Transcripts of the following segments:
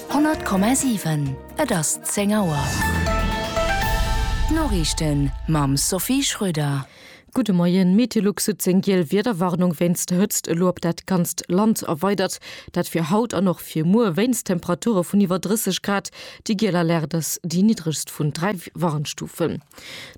100,7 Et ass 10 Auer. D'Noriichten mam Sophie Schröder. Gudde Moien. Meteolux huet seng giel Wiederwarnung wéinst der Hëtzt elo op dat ganzt Land erweidert. Dat fir haut an och fir muer wéinst Temperature vun iwwer 30 Grad. Déi giel Alerte ass déi niddregst vun dräi Warnstufen.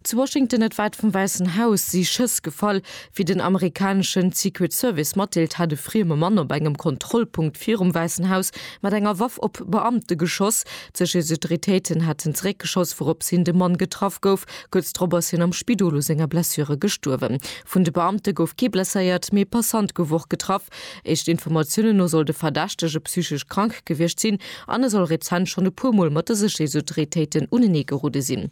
Zu Washington, net wäit vum Wäissen Haus, si Schëss gefall, wéi den amerikaneschen Secret Service matdeelt, hätt e frieme Mann op engem Kontrollpunkt virum Wäissen Haus mat enger Waff op Beamte geschoss. D'Sécherheetsautoritéiten hätten zeréckgeschoss, wourops hin de Mann getraff gouf. Kuerz drop ass hien am Spidol u senger Blessure gestuerwen. Vun de Beamte gouf kee blesséiert, mee e Passant gouf och getraff. Éischte Informatiounen no soll de Verdächtege psychesch krank gewiescht sinn an e soll rezent schonn e puer Mol mat de Sécherheetsautoritéiten uneneegerudde sinn.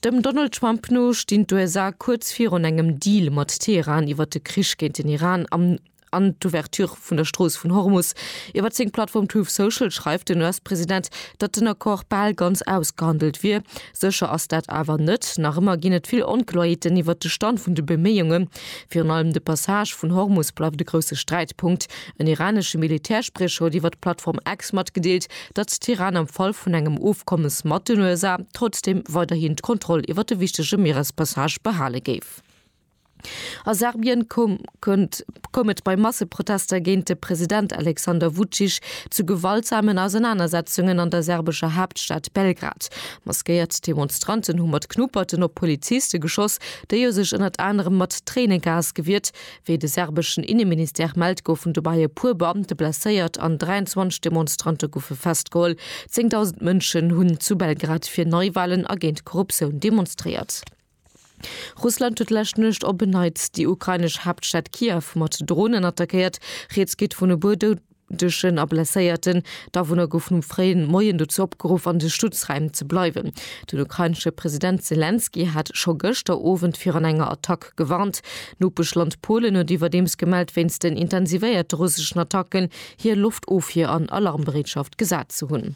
Dem Donald Trump no stinn d'USA kuerz virun engem Deal mat Teheran iwwer de Krich géint den Iran am an d'Ouverture vun der Strooss vun Hormus. Iwwer seng Plattform Truth Social schreift den US-President, datt den Accord bal ganz ausgehandelt wier. Sécher ass dat awer net. Nach ëmmer ginn et vill Onkloerheeten iwwer de Stand vun de Beméiungen. Virun allem de Passage vun Hormus bleift e grousse Sträitpunkt. En iranesche Militärspriecher huet iwwer d'Plattform X matgedeelt, datt d'Iran am Fall vun engem Ofkommes mat den USA trotzdeem weiderhin d'Kontroll iwwer de wichtege Mierespassage behale géif. A Serbien koum et bei Masseprotester géint de President Alexander Vucic zu gewaltsamen Ausenanersetzungen an der serbescher Haaptstad Belgrad. Maskéiert Demonstranten hu mat Knupperten op Poliziste geschoss, déi u sech ënnert anerem mat Tréinegas gewiert, Wéi de serbeschen Inneministère mellt, goufen dobäi e puer Beamte blesséiert an 23 Demonstrante goufe festgeholl. Zéngdausend Mënschen hunn zu Belgrad fir Neiwalen a géint Korruptioun demonstréiert. Russland huet d'lescht Nuecht op en Neits déi ukrainesch Haaptstad Kiew mat Dronen attackéiert. Rieds geet vun e puer Doudegen. Duerchen a Blesséierten. D'Awunner goufen um fréien Moien dozou opgeruff an de Schutzräim ze bleiwen. Den ukrainesche President Selenskyj hat scho gëschter Owend virun enger Attack gewarnt. D'Nopeschland Polen huet iwwerdeems gemellt wéinst den intensivéierte russeschen Attacken hir Loftofwier an Alarmbereetschaft gesat ze hunn.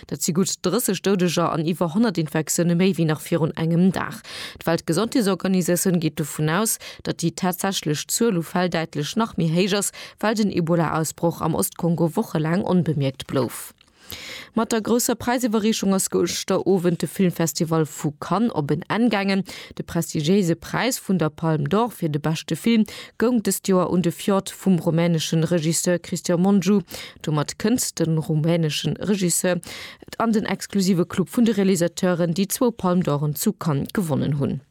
Dat si gutt 30 Doudeger an iwwer 100 Infektioune méi wéi nach virun engem Dag. D'Weltgesondheetsorganisatioun geet dovun aus, datt déi tatsächlech Zuel u Fäll däitlech nach méi héich ass, well den Ebola-Ausbroch am Ost-Kongo wochelaang onbemierkt blouf. Mat der grousser Präisiwwerreechung ass gëschter Owend de Filmfestival vu Cannes op en Enn gaangen. De prestigiéise Präis vun der Palme d'Or fir de beschte Film goung dëst Joer un de Fjord vum rumänesche Regisseur Cristian Mungiu. Domat kënnt de rumänesche Regisseur an den exklusive Club vun de Realisateuren, déi zwou Palme d'Oren zu Cannes gewonnen hunn.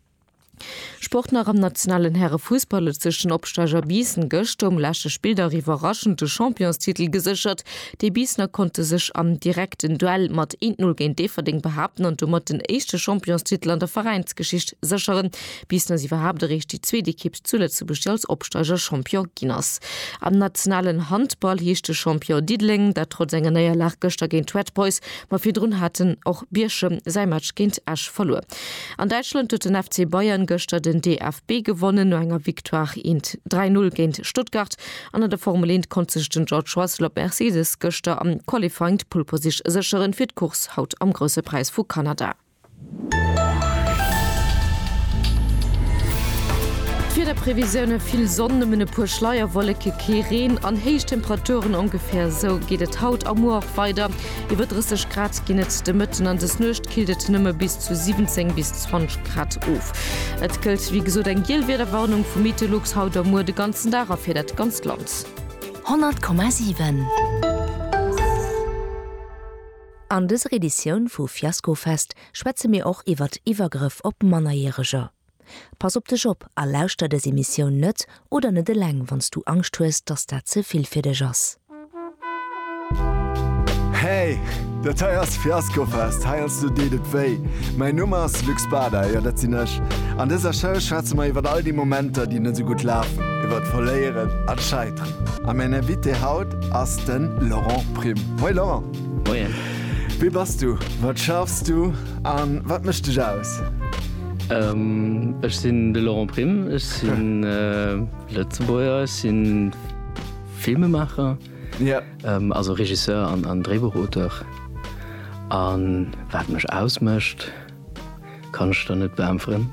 Sport nach am nationalen Härefussball huet sech den Opsteiger Biissen gëschter um leschte Spilldag iwwerraschend de Championstitel geséchert. Déi Biissener konnte sech am direkten Duell mat 1, 0 géint Déifferdeng behaapten an domat den éischte Championstitel an der Veräinsgeschicht sécheren. bis dass iwwerhaapt eréischt déi zweet Ekipp zu Lëtzebuerg, déi als Opsteiger Champion ginn ass. Am nationalen Handball heescht de Champion Diddeleng, dat trotz enger Néierlag gëschter géint d'Red Boys. Ma virdrun haten och Bierchem säi Match géint Esch verluer. An Däitschland huet den FC Bayern gëschter den DFB gewonnen. No enger Victoire int 3 Null géint Stuttgart an an der Formel Eent konnt sech den George Russell op Mercedes gëschter am Qualifying d'Pole Position sécheren fir d'Course haut am Grousse Präis vu Kanada. D'Wiederprevisioune, Vill Sonn, nëmmen e puer Schleierwolleke, kee Reen an héich Temperaturen. Ongeféier esou geet et haut a muer och weider. Iwwer 30 Grad ginn et de Mëtten an des Nuecht killt et nëmme bis zu 17 bis 20 Grad of. Et gëllt wéi gesot eng giel Wiederwarnung vu Meteolux haut a muer de ganzen Dag a fir dat ganzt Land. 100,7. An dëser Editioun vu Fiaskofest schwätze mir och iwwert Iwwergrëff op Mannerjäreger. Pass op dech op a lauschter dës Emissioun net oder net eleng wann s du Angscht hues, dass dat ze vill fir dech ass. Hey, dat hei ass Fiaskofest, heiansdo deet et wéi. Mäin Numm ass Luc Spada, jo dat sinn ech. An dëser Show schwätze mer iwwert all déi Momenter, déi net esou gutt lafen, iwwert Verléieren a Scheiteren. A mäin Invité haut ass de Laurent Prim. Moin Laurent! Moien. Wie bass du? Wat schaffs du? A wat mécht dech aus? Ech sinn de Laurent Prime, ech sinn Lëtzebuerger, ech sinn Filmemaacher, also Regisseur an Dréibuchauteur. A wat mech ausmécht, kann ech der net beäntweren.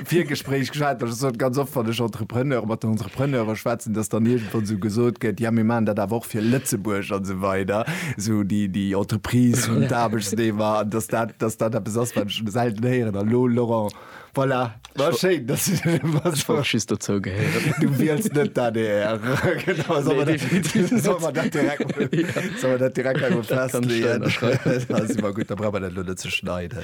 Virgespréich geschwat, dass ech sot, ganz oft, wann ech Entrepreneur, mat den Entrepreneure schwätzen, dass dann iergendwann esou gesot gëtt, ja mir maachen dat awer och fir Lëtzebuerg an esou weider, esou déi, déi Entreprise vun d'Aarbechtsnehmer, an dass dat, dass dat eppes ass, wat ech selten héieren. An elo, Laurent, voilà, war schéin, dass du dat elo machst. Ech wollt just dozou gehéieren. Du wiels net d'ADR. Genau, solle mer dat, solle mer dat direkt, solle mer dat direkt emol festleeën. Dat ass ëmmer gutt, da brauche mer dat elo net ze schneiden.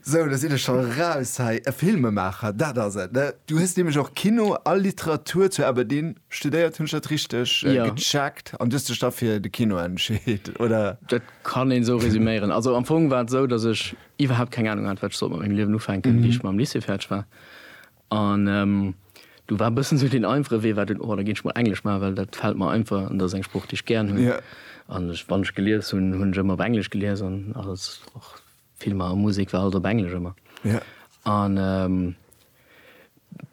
Sou, do sinn ech scho raus hei. E Filmemaacher, dat ass et, ne? Du hues nämlech och Kino a Literatur zu Aberdeen studéiert, hunn ech dat richteg gecheckt? An du hues dech da fir de Kino entscheet, oder? Dat kann een esou resuméieren. Also am Fong war et esou, datt ech iwwerhaapt keng Anung hat, wat ech sollt mat mengem Liewen ufänken, wéi ech mam Lycée fäerdeg war. An do war e bëssen esou deen einfache Wee war dunn, oh da ginn ech mol Englesch maachen, well dat fält mer einfach an dat ass eng Sprooch, déi ech gären hunn. An ech, wann ech gelies hunn, hunn ech ëmmer op Englesch gelies an alles, och Filmer a Musek war alles op Englesch ëmmer. An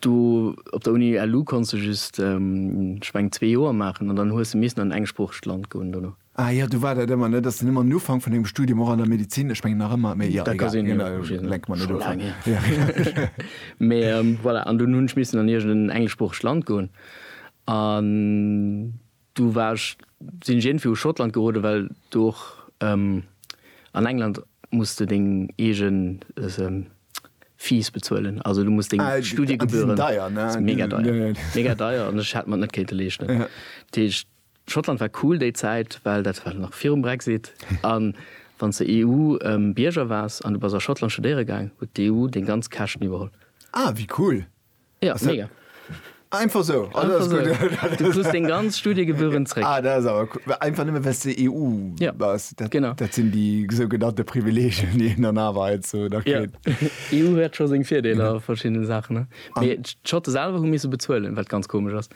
do op der Uni LU konns de just, ech mengen, zwee Joer maachen an dann hues de missen an en engsproochegt Land goen dono. Ah jo, du war dat ëmmer, ne? Dass den ëmmer um Ufank vun dengem Studium, och an der Medizin, ech mengen nach ëmmer, mee jo, egal, lenke mer net of. Mee voilà, an dunn hunn ech missen an iergendeen engleschsproochegt Land goen an du war ech, sinn ech iergendwéi u Schottland geroden, well do och, an England muss de deng eege Fees bezuelen, also du muss deng Studiegebühren. Ah, déi sinn deier, ne? Mega deier, mega deier an ech hätt mer net kéinte leeschten. Dat heescht, Schottland war cool déi Zäit, well dat war nach virum Brexit. A wann s de EU-Bierger waars an du bass a Schottland studéiere gaang, huet d'EU deng ganz Käschten iwwerholl. Ah, wéi cool! Ja, mega. Einfach esou? Ah, dat ass gutt. Einfach esou. Du krus deng ganz Studiegebühren zréck. Ah, dat ass awer cool. Einfach nëmme well s de EU bass. Ja, genau. Dat sinn déi sougenannte Privileegien, déi een dann awer heiansdo nach kritt. Jo, EU huet scho seng Virdeeler a verschiddene Saachen, ne? Mee d'Schotte selwer hu misse bezuelen, wat ganz komesch ass.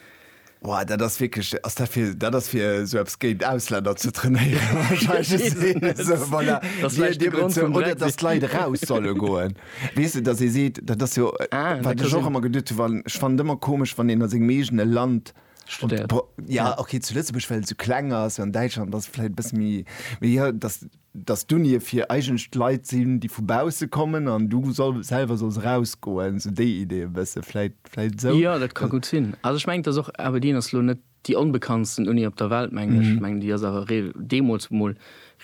Woah, dat ass wierklech, ass dat fir, dat ass fir esou eppes géint Ausländer ze trainéieren wahrscheinlech, esou, voilà, oder datt d'Leit eraus solle goen, weess de, datt ee seet, dat ass jo wat ech och ëmmer geduet hu wann, ech fannen et ëmmer komesch wann een a sengem eegene Land studéiert, jo, okay zu Lëtzebuerg well et esou kleng ass, an Däitschland ass et vläicht e bësse méi, mee jo, datt. dass d'Unie fir eigentlech Leit sinn, déi vu bausse kommen an du selwer solls erausgoen, esou déi Idee e bësse vläit, vläit esou. Jo, dat ka gutt sinn. Also ech mengen, et ass och, Aberdeen ass elo net déi onbekanntsten Uni op der Welt, mengen ech. Ech mengen, déi ass awer deemools emol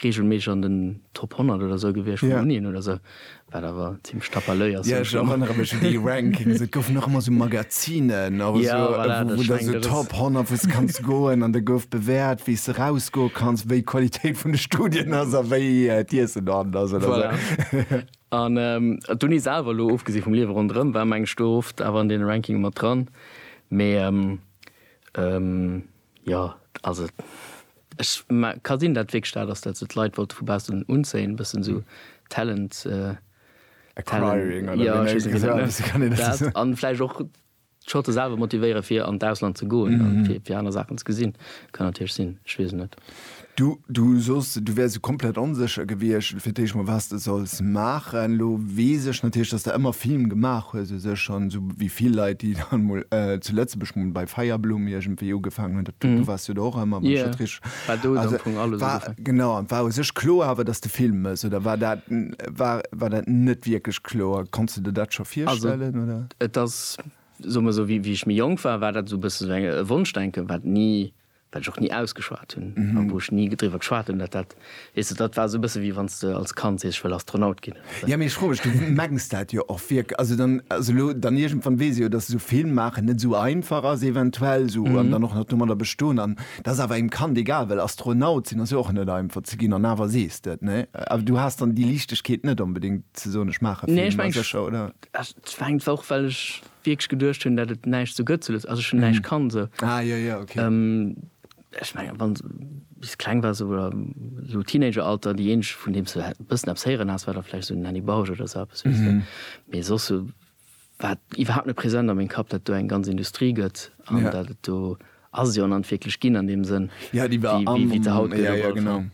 reegelméisseg an den Top 100 oder esou gewiescht vun Unien oder esou. Wat awer zimlech tapalöi ass. Ja, ech erënnere mech un déi Rankings. Et goufen och ëmmer sou Magazinen, och esou, wou da sou Top 100, wou s de kanns goen. An da gouf bewäert, wéi s de rausgoe kanns, wéi d'Qualitéit vun de Studien ass a wéi d'Iessen dohannen ass oder sou. An d'Uni selwer, elo ofgesi vum Liewe ronderëm, war, meng ech, do oft awer an deene Rankinge mat dran. Mee. Jo, also ech ka sinn dat wierklech dat ass dat sou d'Leit wollte vu baussen unzéien, e bëssen sou Talent Acquiring oder wéi nennt ee dat? Dat an vläicht och d'Schotte selwer motivéiere fir an d'Ausland ze goen an fir aner Saachen ze gesinn. Kann natierlech sinn, ech weess et net. Du, du soss, du wäers sou komplett onsécher gewiescht fir d'éischt mol, wat s de solls maachen. Elo weess ech natierlech, dass s de ëmmer Film gemaach hues u sech an esou wéi vill Leit, déi dann emol zu Lëtzebuerg mol bei Feierblumm iergendwéi ugefaangen hunn, dat, du waars jo do och ëmmer, wann ech dat richteg, also war, genau, an et war u sech kloer awer, dass s de Film méchs oder war dat, war, war dat net wierklech kloer? Konns de der dat scho virstellen oder? Also et ass, soe mer esou, wéi ech méi jonk war, war dat esou e bësse sou e Wonschdenken, wat ni wat ech och ni ausgeschwat hunn a wou ech ni driwwer geschwat hunn, dat dat, weess de, dat war esou e bësse wéi wann s de als Kand sees, ech wëll Astronaut ginn. Jo, mee ech froe mech, du mengs dat jo och wierk-, also dann, also elo dann iergendwann weess ech jo, dass esou Film maachen net esou einfach ass eventuell esou an dann och nach domadder bestoen an et ass awer engem Kand egal, well Astronaut sinn ass jo och net einfach ze ginn an awer sees de et, nee? Awer du has dann déi Liichtegkeet net onbedéngt ze soen, ech maache Film, ma sécher, oder? Nee, ech mengen, et war och, well ech wierklech geduecht hunn dat et näischt sou gëtt zu Lëtz also ech hunn näischt kannt sou Ah jo jo ok. Ech mengen wann s bis kleng wars sou oder sou Teenager Alter déi eenzeg vun deem s du e bëssen eppes héieren has war da vläicht sou den Annie Bausch oder sou eppes weess de mee soss sou war et iwwerhaapt net present a meng Kapp dat do eng ganz Industrie gëtt an dat et do ass et jo an an wierklech ginn an deem Sënn Ja déi war am wéi se haut gëtt op alle Fall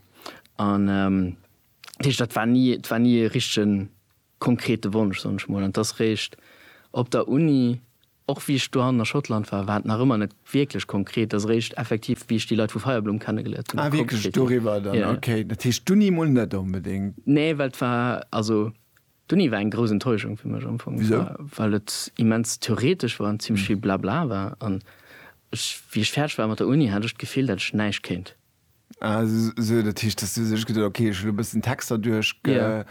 an dat heescht dat war ni et war ni e richtegen konkrete Wonsch, soen ech mol, an dass réischt op der Uni, och wéi ech dohannen a Schottland war, war et nach ëmmer net wierklech konkret, dass réischt effektiv, wéi ech déi Leit vu Feierblumm kennegeléiert hunn, da konkret ginn. Ah, wierklech doriwwer dann? Ja, ja. Okay, dat heescht d'Uni mol net onbedéngt. Nee, well et war, also d'Uni war eng grouss Enttäuschung fir mech am Fong. Wisou? Well et immens theoretesch war an zimlech vill Blabla war an ech, wéi ech fäerdeg war mat der Uni, hat ech d'Gefill, dat ech näischt kéint. Ah, esou, dat heescht, dass du sech geduet hues, okay, ech hu lo e bëssen Texter duerchgeholl.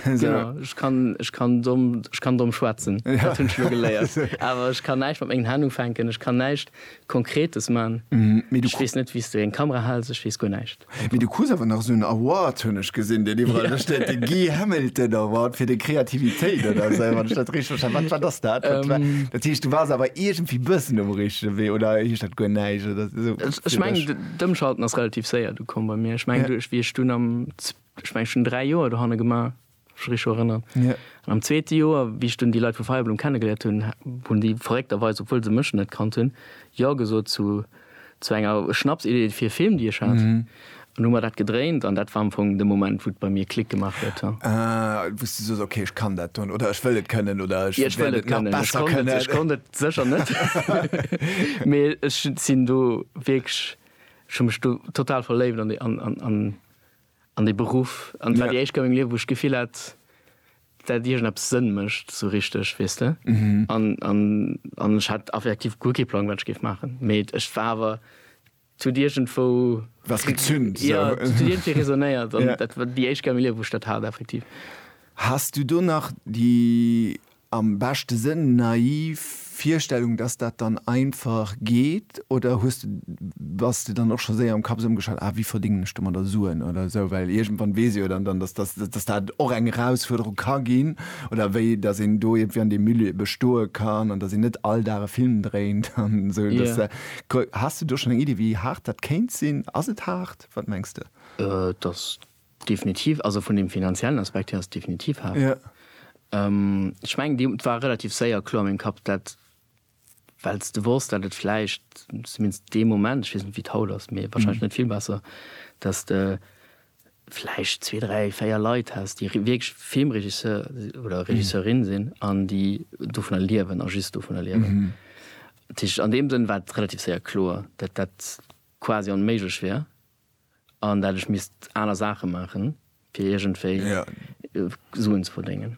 Genau, ech kann, ech kann domm, ech kann domm schwätzen, dat hunn ech lo geléiert. Awer ech kann näischt mat mengen Hänn ufänken, ech kann näischt Konkretes man. Ech weess net, wéi s de eng Kamera hals, ech weess guer näischt. Mee du krus awer nach esou en Award, hunn ech gesinn, deen iwwerall do steet, de Guy Hamilton Award fir deng Kreativitéit oder esou, wann ech dat richteg verstane. Wat, wat ass dat? Dat heescht, du waars awer iergendwéi e bëssen um richtege Wee, oder heescht dat guer näischt? So, ech meng d'Ëmschalten ass relativ séier du komm bei mir. Ech meng duerch wie ech dun am ech meng schon 3 Joer do hanne gemaach rich erënnern. Ja. An am zweete Joer wie ech dun déi Leit vu Feierblum kennengeléiert hunn, hunn déi verréckterweis, obwuel se mech net kannt hunn, jo gesot zu zu enger Schnapsidee fir e Film déi ech hat. Mhm. An hu mer dat gedréint an dat war am Fong de Moment wou et bei mir Klick gemaach huet. Ah, wou s de soss, okay, ech kann dat doen oder ech wëll et kënnen oder ech wäert et nach besser kënnen. Ech konnt et sécher net, mee ech sinn do wierklech, ech hu mech do total verléift an dee, an dee Beruff an et war déi éischt Kéier am Liewen wou ech d'Gefill hat, dat iergendeppes Sënn mécht esou richteg, weess de. An ech hat effektiv guer kee Plang wat ech géif maachen, mee et war awer Et huet iergendwou was gezünt esou. Jo, et huet iergendwéi resonéiert an dat war déi éischt Kéier a mengem Liewen, wou ech dat hat, effektiv. Has du do nach déi, am beschte Sënn, naiv Virstellung, dass dat dann einfach geet oder hues de, bass de dann och scho séier am Kapp esou ëmgeschalt, ah wéi verdéngen ech domadder Suen oder esou, well iergendwann weess ee jo dann, dass dass dat och eng Erausfuerderung ka ginn oder wéi dass een do iergendwéi an deem Milieu bestoe kann an dass een net all Dag e Film dréint an esou, dass. Has de do schon eng Iddi wéi haart dat kéint sinn? Ass et haart? Wat mengs de? Et ass definitiv, also vun dem finanziellen Aspekt hier ass et definitiv haart. Ech mengen déi et war relativ séier kloer a mengem Kapp dat, well s de wosst dat et vläicht, zumindest dee Moment, ech weess net wéi et haut ass, mee wahrscheinlech net vill besser, dat s de vläicht zwee, dräi, véier Leit häss, déi wierklech Filmregisseur oder Regisseurin sinn an déi dovunner liewen a just dovunner liewen. Dat heescht, an deem Sënn war et relativ séier kloer, datt dat quasi onméiglech wär an dat ech misst aner Saache maachen, fir iergendwéi Suen ze verdéngen.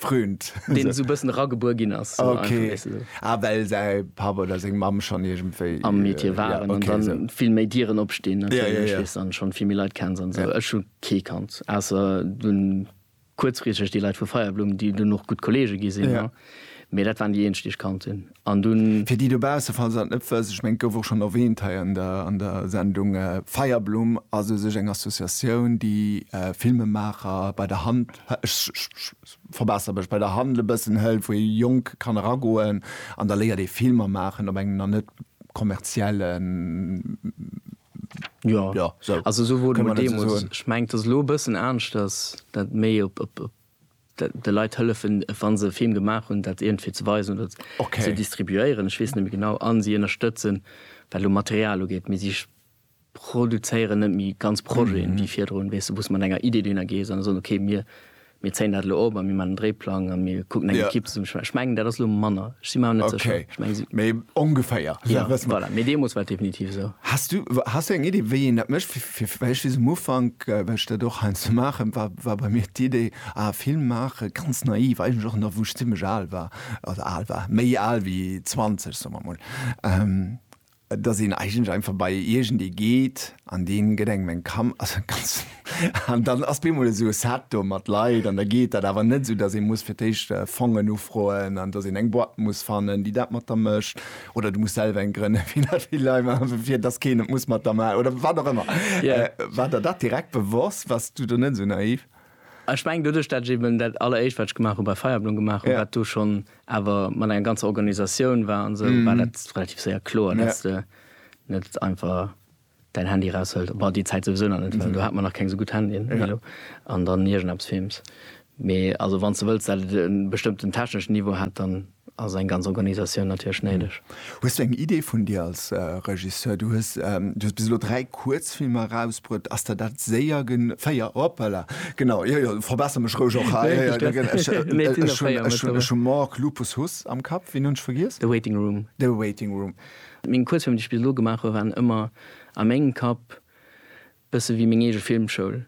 Fründ. Deen esou e bëssen eragebuer ginn ass. So einfach, Okay. weess de, so. Ah, well säi Papp oder seng Mamm schonn iergendwéi. am Metier äh, waren ja, okay, an dann so. vill méi Dieren opstinn Ja, ja, natierlech, ja. weess, an schonn vill méi Leit kenns an sou. Ja. Ech hu kee kannt, ausser dunn kuerzfristeg déi Leit vu Feierblumm, déi dunn och gutt Kollege gi sinn, Ja. ne? Mee dat waren déi eenzeg, déi ech kannt hunn. An dunn. Fir déi dobausse, falls se dat net wëssen, ech mengen, et gouf och schonn erwähnt hei an der, an der Sendung, Feierblumm ass u sech eng Associatioun, déi Filmemaacher bei der Hand, ech verbesser mech, bei der Hand e bëssen hëlt, wou ee Jonk kann eragoen an da léiert ee Filmer maachen op engem nach net kommerziellen, jo, jo, sou, kënne mer dat esou soen? Jo, also esou wor et mol deemools. Ech mengen, et ass elo e bëssen aneschters, dat méi op, op, op. de Leit hëllefen, wa se e Film gemaach hunn, dat iergendwéi ze weisen oder ze distribuéieren, ech weess net méi genau, a si ënnerstëtzen, wat elo Material ugeet. Mee si produzéieren net méi ganz Projeten ewéi virdrun, weess de, wou s de mat enger Iddi dohinner gees an soen, okay, mir zéien dat elo op a mir maachen en Dréiplang a mir kucken eng Ekipp zesummestellen. Ech mengen, dat ass elo manner, ech si mer awer net sécher. Ech mengen si. Mee ongeféier. Voilà, mee deemools war et definitiv esou. Has du eng Iddi, wéi een dat mécht? Fir vläicht bis um Ufank, well ech dat och heiansdo maachen, war, war bei mir d'Idee, ah, Film maache ganz naiv, eigentlech och nach wou ech zimlech al war, also al war, méi al wéi 20, soe mer emol, dass een eigentlech einfach bei iergendee geet an dee gëtt engem eng Kam, also ganz, an dann ass bemol esou e Set do mat Leit an da geet dat, awer net esou, dass ee muss fir d'éischt Fongen ufroen an dass een eng Boîte muss fannen, déi dat mat der mécht, oder du muss selwer eng grënne fir dat vill Lei machen, fir dass keen et muss mat der ma oder wat och ëmmer. Ja. Äh, war der dat direkt bewosst? Wars du do net esou naiv? Ech mengen doduerch, dat ech eben dat alleréischt, wat ech gemaach hu bei Feierblom gemaach hu, Ja. wat do schonn awer mat enger ganzer Organisatioun war an esou, war dat relativ séier kloer, dass du net einfach Däin Handy raushëlt, bah déi Zäit souwisou nach net, well do hat mer nach keng esou gutt Handyen wéi elo, an dann iergendeppes films. Mee also wann s de wëlls, dat et e bestëmmten techneschen Niveau hätt, dann ass eng ganz Organisatioun natierlech néideg. Hues du eng Idee vun dir als Regisseur? Du hues bis elo dräi Kuerzfilmer erausbruet. Ass der dat séier gen. Véier, hoppala, genau, jo jo, verbesser mech roueg och hei. Ech hunn Mork, Lupus, Huss am Kapp. Ween hunn ech vergiess? The Waiting Room. The Waiting Room. Meng Kuerzfilmer, déi ech bis elo gemaach hu waren ëmmer a mengem Kapp bësse wéi meng eege Filmschoul.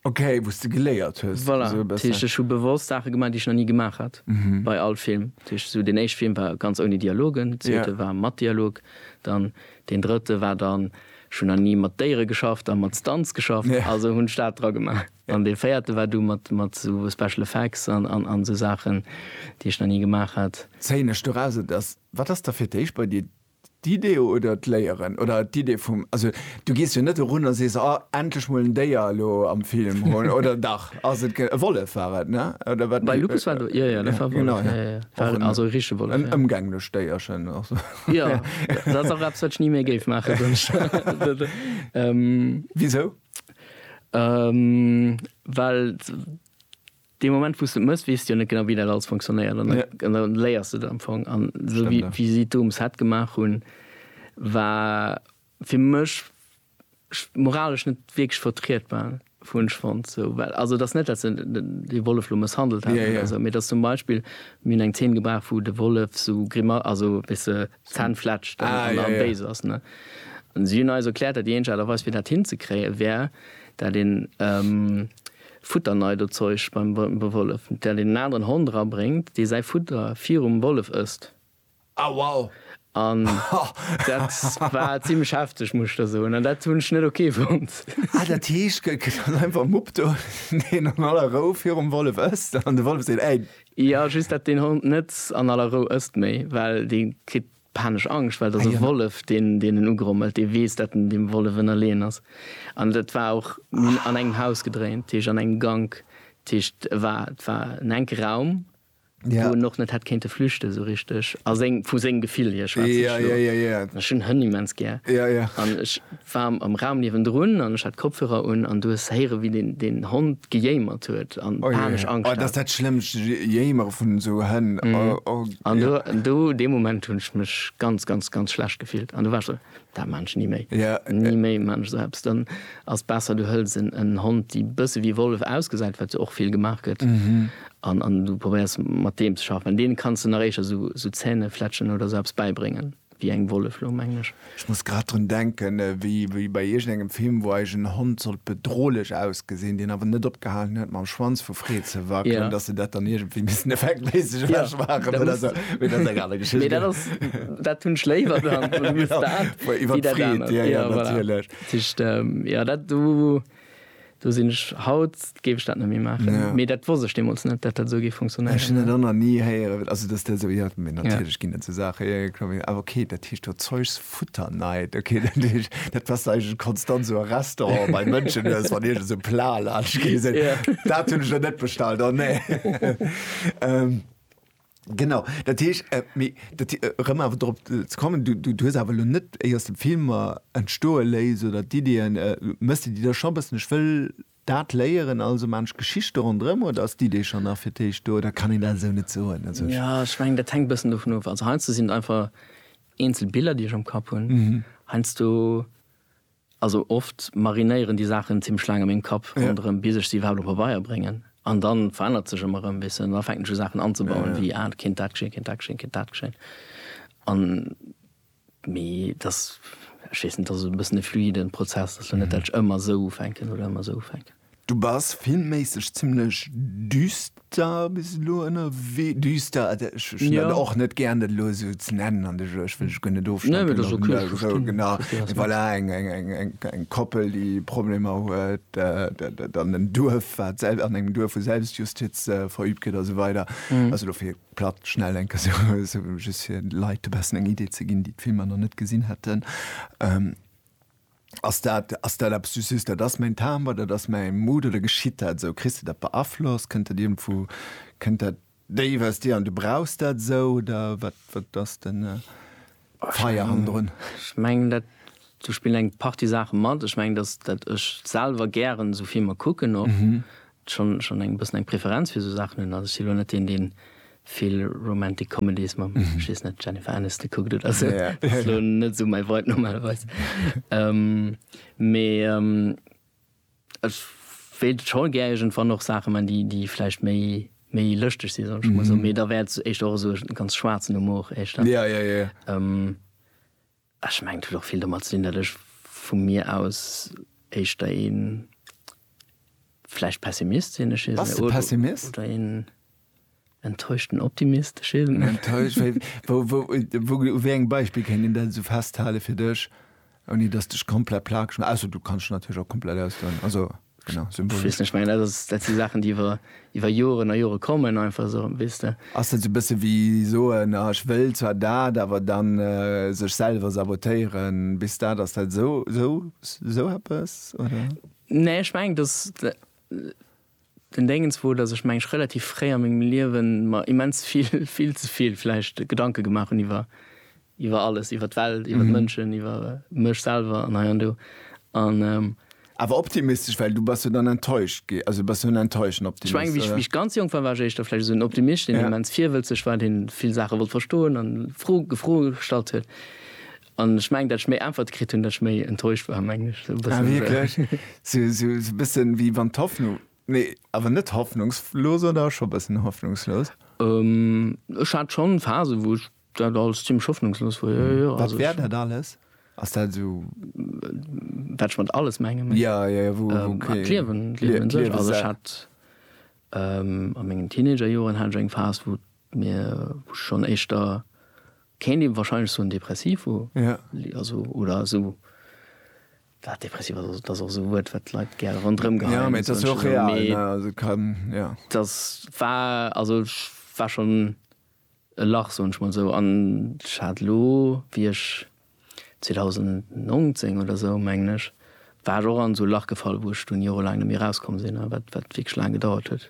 Ok, wou s de geléiert hues. Voilà, dat heescht ech hu bewosst Saache gemaach, déi ech nach ni gemaach hat bei all Film. Dat heescht esou deen éischte Film war ganz ouni Dialogen, deen zweete war mat Dialog, dann deen drëtte war dann, ech hunn nach ni mat Déiere geschafft a mat Stunts geschafft, also hunn ech dat dra gemaach. An dee véierte war du mat esou Special Effects an esou Saachen, déi ech nach ni gemaach hat. Zéien ech doraus, et ass Wat ass da fir d'éischt bei dir, d'Idee oder d'Léieren? Oder d'Idee vum, also du gees jo net erun a sees, oh endlech mol en Déier elo am Film hunn, oder dach? Ass et e Wollef war et, ne? Oder wat? Bei Lupus war do, jo jo, dat war e Wollef, jo jo, war en, also e richtege Wollef, jo. En ëmgänglecht Déierchen och sou. Jo, dat ass och eppes wat ech ni méi géif maachen, soen ech der. Wisou? Well Dee Moment wou s de et mëss, weess de jo net genau wéi dat alles fonctionnéiert an da léiers de et am Fong. An esou wéi si d'Dom Set gemaach hunn, war fir mech moralesch net wierklech vertrietbar, hunn ech fonnt. Also et ass net, datt se dee Wollef elo mësshandelt hätten oder esou, mee et ass zum Beispill, mir hunn eng Zeen gebraucht wou de Wollef esou, also weess de, D'Zänn fletschen an da béis ass. Si hunn eis erkläert, datt déi eenzeg Aart a Weis fir dat hinzekréien, wär dat een Futterneidozeuch beim Wollef, dat een en aneren Hond erabréngt, dee säi Futter virum Wollef ësst. An dat war zimmlech hefteg, muss ech der soen. An dat hunn ech net ok fonnt. Ah, dat heescht, gëtt dann einfach Mupp do, deen an aller Rou virum Wollef ësst an de Wollef seet, Ey! Jo just dat deen Hond net an aller Rou ësst méi, well dee kritt panesch Angscht, well et ass e Wollef deen deen en ugrommelt, dee weess dat en deem Wollef ënnerleeën ass. An dat war och, mir hunn an engem Haus gedréint, dat heescht an engem Gank, dat heescht et war et war en enke Raum, wou en och net hätt kéinte flüchte sou richteg, a seng vu sengem Gefill hier schwätze ech lo, an ech hunn Hënn immens gär an ech war am Raum niewendrun an ech hat Kopfhörer un an du hues héiere wéi deen deen Hond gejéimert huet an panesch Angscht hat. Oh jee, oh dat ass dat schlëmmst Jéimere vun esou Hënn, oh. An do do dee Moment hunn ech mech ganz ganz ganz schlecht gefillt an do war ech esou, dat maan ech ni méi, ni méi maan ech esou eppes. Dann ass besser du hëls en en Hond déi bësse wéi Wollef ausgesäit, wat jo och vill gemaach gëtt, an an du probéiers mat deem ze schaffen, well deene kanns de nach éischer esou esou Zähnefletschen oder esou eppes bäibréngen. Wéi eng Wollef lo, mengen ech? Ech muss grad drun denken, wéi bei iergendengem Film, wou eis en Hond sollt bedrohlech ausgesinn, deen awer net opgehalen huet mam Schwanz vu Freed ze wackelen, dass se dat dann iergendwéi missen effektméisseg ewech maachen oder sou. Mee dat ass eng aner Geschicht. Mee dat ass, dat hunn ech léiwer dann. Iwwer d'Freed, jo, jo, natierlech. Tëscht, jo, dat do. Do sinn ech, haut géif ech dat net méi maachen, mee dat wosst ech deemools net, datt dat esou géif funktionéieren. Ech hunn dat och nach ni héieren, also datt dat esou, jo, mee natierlech ginn et esou Saachen, jo, jo, kloer, awer okay, dat heescht do Zeugs futter night, okay, dat heescht, dat passt eigentlech konstant esou a Restauranten bei Mënschen, dass wann iergend esou e Plat laanscht geet, dass se soen, dat hunn ech der net bestallt, oh nee. Genau, dat heesch, äh, mi, dat, äh, rëm awer drop äh, ze kommen, du, du, du hues awer lo net éi aus dem Filmer entstoe léis oder d'Ideeën, äh, mëss de déi da scho bëssen, ech wëll dat léieren, also man ech Geschichte ronderëm, oder ass d'Idee schonn nach fir d'éischt do, oder kann een dat esou net soen? Also ech. Ja, ech mengen, dat hänkt bëssen dovun of. Also heiansdo sinn et einfach eenzel Biller, déi ech am Kapp hunn. Heiansdo Also oft marinéieren déi Saachen zimmlech laang a mengem Kapp ronderëm, bis ech se iwwerhaapt op Pabeier bréngen. An da verännert sech ëmmer erëm e bëssen. An da fänken ech u Saachen anzebauen, wéi, ah, et kéint dat geschéien, et kéint dat geschéien, et kéint dat geschéien. An, mee et ass, ech weess net, et ass e bëssen e fluiden Prozess. Et ass jo net, dat ech ëmmer esou ufänken oder ëmmer esou ufänken. Du bass filmméisseg zimlech düster bis elo ënnerwee. Düster, ech hunn dat Ja. och net gären, dat elo esou ze nennen an de Jeu. Ech wëll dech guer net Nee, ofschneiwen. mee dat ass okay, ech Esou, verstinn, genau. ech verstinn, wat s Voilà, eng, eng, eng, eng, eng Koppel, déi Problemer huet, dat, dat an en Duerf, wat selb-, an engem Duerf, wou Selbstjustiz verübt gëtt a sou weider. Also elo fir platt schnell eng Kéier esou, esou just fir de Leit e bessen eng Idee ze ginn, déi d'Filmer nach net gesinn hätten. Ass dat, ass dat eppes, du sees, dat ass mäin Timbre, dat ass mäi Mood, oder geschitt dat esou? Kriss de dat beaflosst? Kënnt dat iergendwou, kënnt dat déif aus dir an du brauchs dat esou, oder wat, wat ass de Feier hannendrun? Ech mengen dat, do spillen eng Partie Saache mat. Ech mengen, datt ech selwer gären esou Filmer kucken och. schonn schonn eng bëssen eng Preferenz fir esou Saachen hunn. Also ech si lo net deen, deen vill Romantic Comedies mam, ech weess net, Jennifer Aniston kuckt oder esou. Ja, ja. Ass lo net esou mäi Vibe normalerweis. Mee ech wéilt scho gär iergendwann och Saache man, déi déi vläicht méi méi lëschteg si soll ech emol soen. Mee da wär et éischter och esou e ganz schwaarzen Humor éischter. Ja, ja, ja. Ech mengen et huet och vill domat ze dinn, datt ech vu mir aus éischter ee vläicht Pessimist sinn. Ech weess net. Pessimist? Oder een enttäuschten Optimist. Ech weess et net. Enttäuscht? Wéi, u wéi engem Beispill kéint een dat esou festhalen fir dech, ouni datt s de dech komplett plagesch maass? Ausser du kanns dech natierlech och komplett ausdoen. Also. Genau, symbolisch. Weess net, ech mengen dat ass, dat si Saachen déi iwwer, iwwer Joren a Jore kommen einfach esou, weess de. Ass dat esou e bësse wéi soen, ah ech wëll zwar dat, awer dann sech selwer sabotéieren, bis dat ass dat esou, esou, esou eppes oder? Nee, ech mengen dass den Déngens wor, dass ech mengen ech relativ fréi a mengem Liewen mer immens vill, vill ze vill vläicht Gedanke gemaach hunn iwwer Iwwer alles, iwwer d'Welt, iwwer d'Mënschen, iwwer mech selwer an hei an do. An. Awer optimistesch, well du bass jo dann enttäuscht gi, also bass jo en enttäuschten Optimist, oder? Ech menge, wéi ech ganz jonk war, war ech éischter vläicht esou en Optimist, deen immens virwëlzeg war, dee vill Saache wollt verstoen an Fro, Froe gestallt huet. An ech mengen, datt ech méi Äntwerte kritt hunn, datt ech méi enttäuscht war, mengen ech. Esou e bëssen. Ah, wierklech? Esou, esou e bëssen, wéi wann d'Hoffnung, nee, awer net hoffnungslos, oder scho e bëssen hoffnungslos? Ech hat schonn Phasen, wou ech Dat alles zimmlech hoffnungslos wor, jo, jo. Wat wär dat alles? Ass dat esou. Wat ech mat alles menge méi. Jo, jo, jo, wou, wou, okay. D'Liewen, d'Liewen un sech. Also ech hat a mengen Teenagerjoren hat ech eng Phas, wou mir, wou ech schonn éischter, kéint ee wahrscheinlech soen, depressiv wor. Jo. Also, oder esou, well depressiv ass, dat ass och esou e Wuert, wat d'Leit gär ronderëm geheien. Jo, mee et ass jo och real, ne? Also et kann, jo. Dat war, also ech war schonn. E Lach, soen ech mol esou. An ech hat elo, wéi ech 2019 oder esou, mengen ech, war ech och an esou e Lach gefall, wou ech dunn jorelaang net méi erauskomm sinn a wat wierklech laang gedauert huet.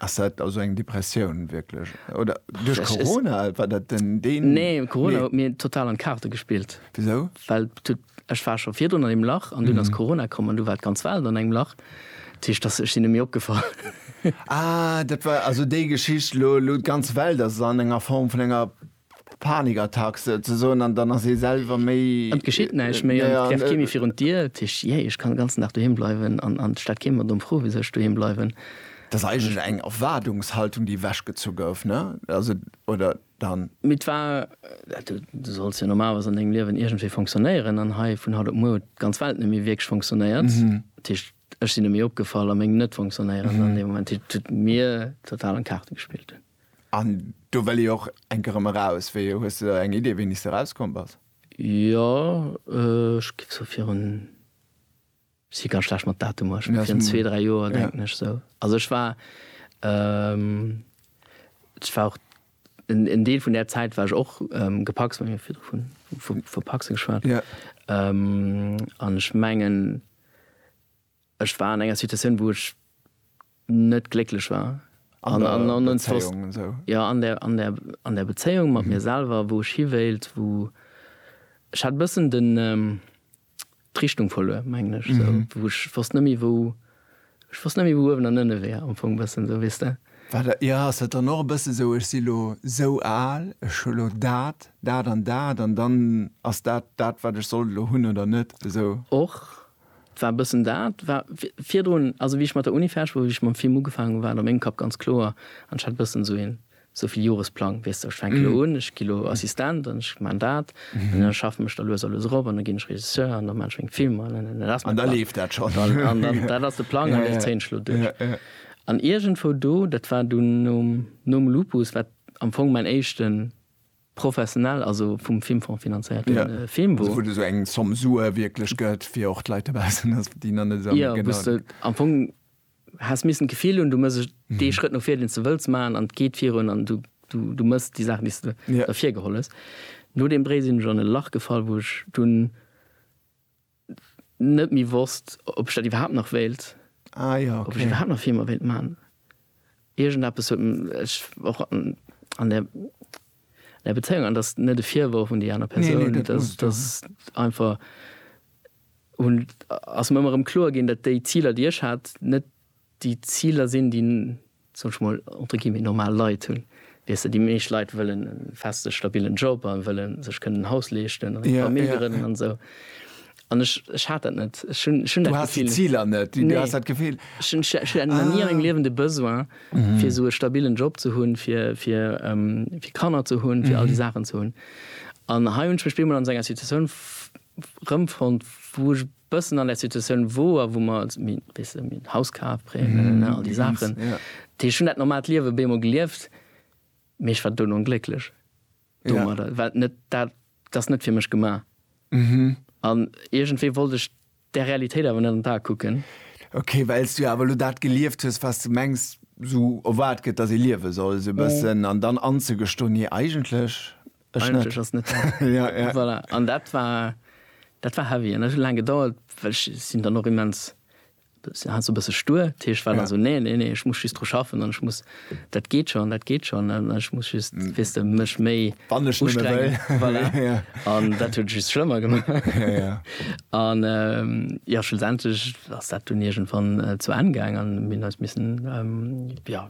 Ass dat also eng Depressioun wierklech? Oder duerch Corona? War dat den. Nee, Corona huet mir total an d'Kaarte gespillt. Wisou? Well et huet Ech war scho virdrun an deem Lach an dunn ass Corona komm an du war d'ganz Welt an engem Lach. Dat heescht, dass, ech sinn net méi opgefall. Ah, dat war also déi Geschicht, elo, elo d'ganz Welt ass an enger Form vun enger Panikattack souzesoen an dann ass ee selwer méi. An et geschitt näischt méi an et läft kee méi virun d'Dier. Dat heescht, jee, ech kann den ganzen Dag doheem bleiwen an et stellt kee mer domm Fro, wisou ech doheem bleiwen. Dat ass eigentlech eng Erwaardungshaltung, déi ewechgezu gouf, ne? Also, oder? dann. Mee 't war, du solls jo normalerweis an dengem Liewen iergendwéi fonctionnéieren, an hei vun haut op muer huet d'ganz Welt net méi wierklech fonctionnéiert. Dat heescht, ech sinn net méi opgefall a meng Net-Fonctionnéieren an deem Moment, déi et mir total an d'Kaarte gespillt hunn. An do wëll ee och enk erëm eraus. Wéi, hues de da eng Idee, wéini s de erauskomm bass? Jo, ech géif sou virun Ech si ganz schlecht mat Datumer, ech hunn virun zwee, dräi Joer, denken ech sou. Also ech war, ech war och, en Deel vun där Zäit war ech och gepacst, mir hu virdru vun, vu, vu pacse geschwat. An ech mengen, ech war an enger Situatioun, wou ech. net glécklech war an der Bezéiung mat mir selwer, wou ech hi wéilt, wou ech hat e bëssen d'Richtung verluer, mengen ech, wou ech wosst net méi, wou ech wosst net méi, wou uewen an ënne wär am Fong, e bëssen esou, weess de. Jo, ass dat dann och e bësse sou, ech si lo sou al, ech hu lo dat, dat an dat an dann ass dat dat, wat ech sollt elo hunn oder net? Esou. Och. Et war e bëssen dat, war virdrun, also wéi ech mat der Uni fäerdeg wor, wéi ech mam Film ugefaangen hunn, war et a mengem Kapp ganz kloer an ech hat e bëssen esou een Souviljoresplang, weess de, ech fänke lo un, ech gi lo Assistent an ech man dat an da schaffen ech da lues a lues erop an da ginn ech Regisseur an da man ech meng Filmer an an dat ass mäin Plang. An da, dat ass de Plang an dee zéien ech lo duerch. An iergendwou do, dat war dunn nom Lupus, wat am Fong mäin éischten. Professionell, also vum Filmfong finanzéierte Film, wou. Wou et esou eng Zomm Sue wierklech gëtt, fir och d'Leit dobaussen, ass, déi nach net esou am. Jo, wou s de am Fong häss missen d'Gefill hunn, du muss ech dee Schrëtt no vir, deen s de wëlls maachen, an et geet virun an du, du, du méchs déi Saachen, déi s de ervirgeholl hues. No deem Bréi sinn ech an e Lach gefall, wou ech dunn. net méi wosst, ob ech dat iwwerhaapt nach wéilt. Ah jo, okay. Ob ech iwwerhaapt nach Filmer wéilt maachen. Iergendeppes huet mech och an der, an der Bezéiung, an dat ass net e Virworf un déi aner Persoun. Nee, nee, dat ass, dat ass einfach, hunn, ass mer ëmmer erëm kloer ginn, datt déi Ziler, déi ech hat, net. déi Ziler sinn, déi, soen ech mol, entre guillemets normal Leit hunn, weess de, déi meescht Leit wëllen e feste stabillen Job a wëlle sech kënnen en Haus leeschten an eng Famill grënnen an esou an ech, ech hat dat net, ech hunn, ech hunn dat Gefill net. Du has déi Ziler net, du has dat Gefill net. Ech hunn, ech hat nach ni an mengem Liewen de Besoin fir esou e stabillen Job ze hunn, fir, fir, fir Kanner ze hunn, fir all déi Saachen ze hunn an hei hunn ech mech bemol an esou enger Situatioun rëmfonnt, wou ech Bëssen an der Situatioun woer, wou mer, weess de, en Haus kaf, Prêt, ne, all déi Saachen. Dat heescht, ech hunn dat normaalt Liewe bemol gelieft, mee ech war duerno onglécklech domadder, well net dat, dat ass net fir mech gemaach. An iergendwéi wollt ech där Realitéit awer net an d'Ae kucken. Ok, well s du jo awer elo dat gelieft hues, wat s du mengs, esou erwaart gëtt, datt ee liewe soll, esou e bëssen, an dann anzegestoen, Nee, eigentlech. Ech net. Eigentlech ass net dat. Ja, ja. Voilà. An dat war, dat war heavy. An dat huet laang gedauert, well ech sinn dann och immens, si hat esou e bësse stur. Dat heescht, war dann Ja. esou, nee, nee, nee, ech muss just dru schaffen an ech muss, dat geet schonn, dat geet schonn an ech muss just, weess de, mech méi Wann ech nëmme ustrengen. wëll. Voilà. Ja. An dat huet et just schlëmmer gemaach. Ja, ja. An ähm, jo, schlussendlech ass dat dunn iergendwann äh, zu Enn gaang an mir hunn eis missen, ähm, ja,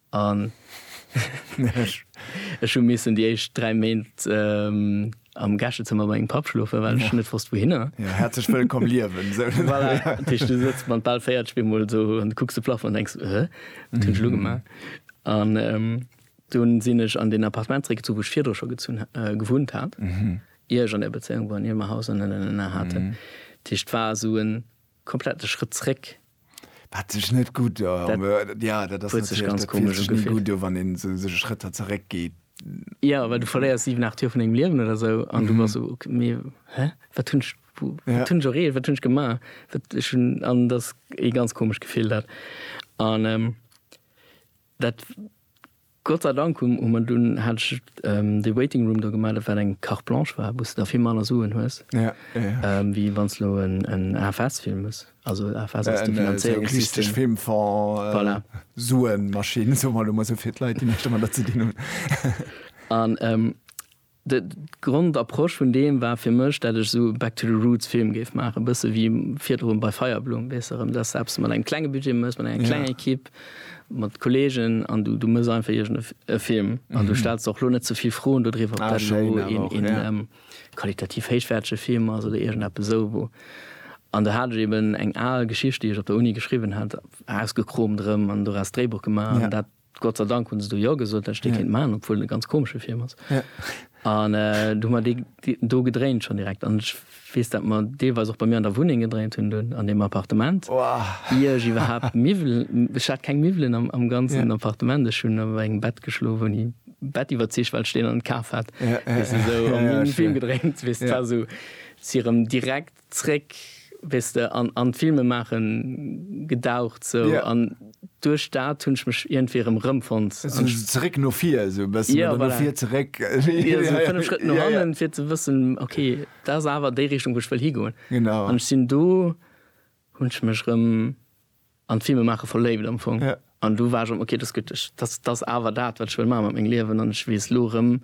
An ech hu missen déi éischt 3 Méint am Gäschezëmmer bei mengem Papp schlofen, well ech net wosst wouhinner. Jo, häerzlech wëllkomm liewen! Voilà, dat heescht, du sëtz mat bal 40 op eemol do an kucks de Plafong an denks, Hä, wat hunn ech elo gemaach? An dunn sinn ech an deen Appartement zeréckgezunn, wou ech virdru scho gezunn, gewunnt hat, ier ech an där Bezéiung war an ier mer Haus an Ënnerenner haten. Dat heescht, war esou en. Komplett de Schrëtt zréck. Wat sech net gutt, jo, dat ass natierlech gutt, jo, wann een esou Schrëtter zeréck geet. Jo, well du verléiers 7, 8 Joer vun dengem Liewen oder esou an du bass esou, ok, mee hä, wat hunn ech, wat hunn ech erreecht, wat hunn ech gemaach? Wat ech hunn, an dat ass ee ganz komescht Gefill dat an. Dat Gott sei Dank hu mer dunn hat ech dee Waiting Room do gemaach, dat wat eng Carte Blanche war, wou s de da vill manner Suen hues, wéi wann s lo en AFS-Film hues. Also AFS ass de Finanzéierungssystem. Filmfonds. Voilà. Suenmaschinn, soe mer elo mol esou fir d'Leit, déi näischt domadder ze dinn hunn. An D' Grondapproche vun deem war fir mech, dat ech esou Back to the Roots Film géif maachen, e bësse wéi virdrun bei Feierblumm, weess de, rëm dass eppes mat engem klenge Budget mëss, mat enger klenger Ekipp, mat Kolleegen an du mëss einfach iergend e Film an du stells der och lo net ze vill Froen dodriwwer, ob dat elo een qualitativ héichwäertege Film ass oder iergendeppes esou wou. An do hat ech eben eng al Geschicht, déi ech op der Uni geschriwwen hat, ausgekromt erëm an doraus d'Dréibuch gemaach an dat. Gott sei Dank hunn se do Jo gesot, dat ech dee kéint maachen, obwuel et e ganz komesche Film ass. An du hu mer dee do gedréint schonn direkt. An ech weess, dat mer deelweis och bei mir an der Wunneng gedréint hunn, do an deem Appartement, ier ech iwwerhaapt Miwwel, ech hat keng Miwwelen am ganzen Appartement, ech hunn op engem Bett geschlof, ouni e Bett iwwerzeegt, well ech deen an kaf hat, weess de, esou, a mir hunn e Film gedréint, weess de, et war esou, si erëm direkt Zréck, weess de, an an d'Filmemaache gedaucht sou. Yeah. An duerch dat hunn ech mech iergendwéi erëm rëmfonnt. Sou zeréck no vir esou e bëssen. Yeah, voilà. Oder no vir zeréck. Jo, sou fënnef Schrëtt no hannen, yeah, yeah. fir ze wëssen, ok, dat ass awer déi Richtung, wou ech wëll higoen. Genau. An ech sinn do, hunn ech mech erëm. an d'Filme maache verléift am Fong. Ja. An du war ech am, ok, dat ass gutt, ech, dat, dat ass awer dat, wat ech wëll maache mat mengem Liewen an ech weess elo erëm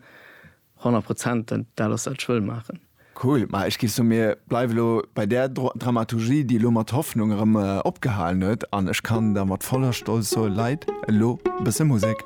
100 Prozent, dat, dat ass dat, wat ech wëll maachen. Cool. Ma ech géif soen, mir bleiwe lo bei där Dro Dramaturgie, déi elo mat Hoffnung erëm opgehalen huet an ech kann da mat voller Stolz soen, Leit, elo e bësse Musek.